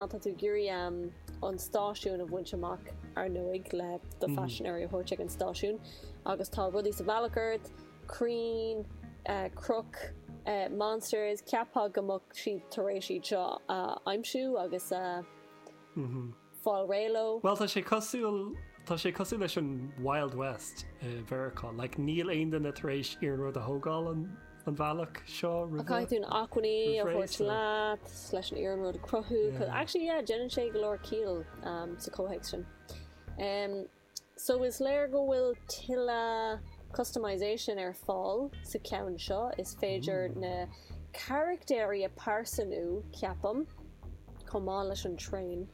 Tá tú ag iarraidh an stáisiún a bhaint amach, ar ndóigh, le do phaisinéirí a thabhairt chuig an stáisiún agus tá rudaí sa bhealach ort, crainn, cnoic, monsters, cheapfá go mbeadh siad tar éis iad seo a aimsiú agus a fháil réidh leo. Bhuel, tá sé cosúil, tá sé cosúil leis an Wild West i Mheiriceá, like, níl aon duine tar éis iarnród a thógáil, an. an bhealach seo roimhe, caithfidh tú na acmhainní a thabhairt leat leis an iarnród a chruthú. Cos, actually yeah, déanann sé go leor ciall sa chomhthéacs sin. Em, so is léir go bhfuil tuilleadh customization ar fáil sa cheann seo, is féidir na carachtéirí a phearsanú, ceapaim, chomh maith leis an traein.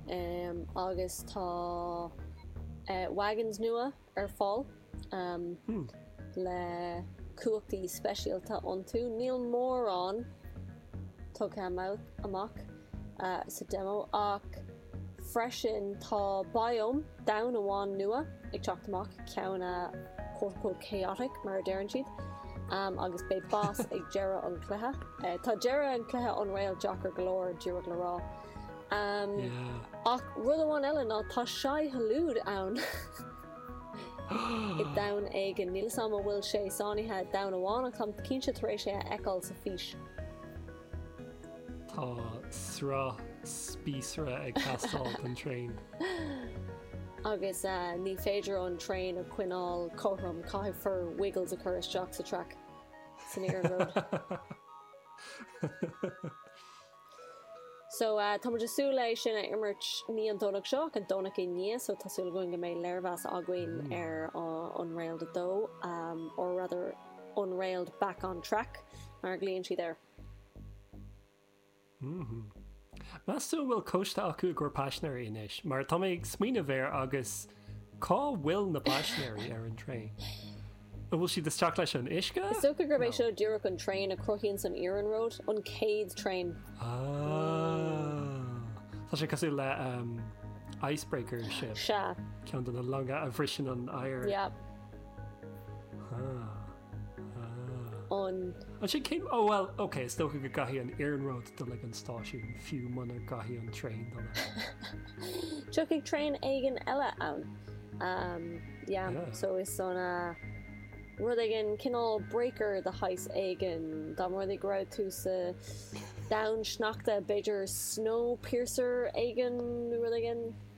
Em, agus tá eh, wagons nua. ar fáil le cumhachtaí speisialta iontu. Níl mórán tugtha amach sa demo ach freisin tá biome domhan amháin nua ag teacht amach, ceann quote-unquote chaotic mar a deireann siad, agus beidh boss ag deireadh an chluiche. Tá deireadh an chluiche Unrailed deacair go leor, díreach le rá. Ach rud amháin eile ná tá Shai Hulud ann i domhan éigin. Níl 'fhios a'm an bhfuil sé sáinnithe i domhan amháin ach táim cinnte tar éis é a fheiceáil san fhís. Tá sraith spíosra ag teastáil don traein. Agus ní féidir an traein a choinneáil cothrom, caithfear Wiggles a chur isteach sa traic, san iarnród. So, tá muid ag súil é sin a imirt, ní an Domhnach seo ach an Domhnach i ndiaidh so tá súil againn go mbeidh léirmheas againn ar Unrailed 2, or rather Unrailed back on track mar a ghlaíonn siad air. Meas tú an bhfuil cloiste acu faoi GUR paisinéirí anois? Mar tá mé ag smaoineamh air agus. Cá bhfuil na paisinéirí ar an traein? An bhfuil siad isteach leis an uisce? Is dócha gurb é seo díreach an traein a chruthaíonn an iarnród, an chéad traein. Ah. Tá sé cosúil le icebreaker ship. Sea. Ceann de na longa a bhriseann an oighear. Yep. Ah. an. Ansin cé. Ó bhuel, ok, is dócha go gcaithfidh an iarnród dul ag an stáisiún, fiú muna gcaithfidh an traein dul ann. Tiocfaidh traein éigin eile ann. Umm, yeah, so is ea nó rud éigin, cineál breaker de shaghas éigin, dá mba rud é go raibh tú sa domhan sneachta, b'fhéidir snowpiercer éigin nó rud éigin?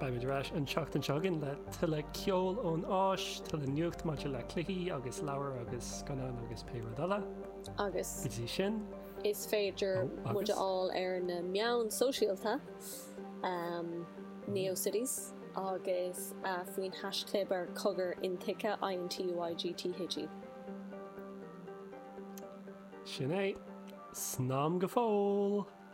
Beimid ar ais an tseachtain seo chugainn le tuilleadh ceoil ón Áis, tuilleadh nuacht maidir le cluichí agus leabhair agus scannáin agus pé rud eile. Agus Go dtí sin, is féidir oh, agus? muid a fháil ar na meáin shóisialta, ahem, Neocities agus eh, faoin haischlib ar cogar intuigthe, INTUIGTHE. Sin é. Slán go fóill!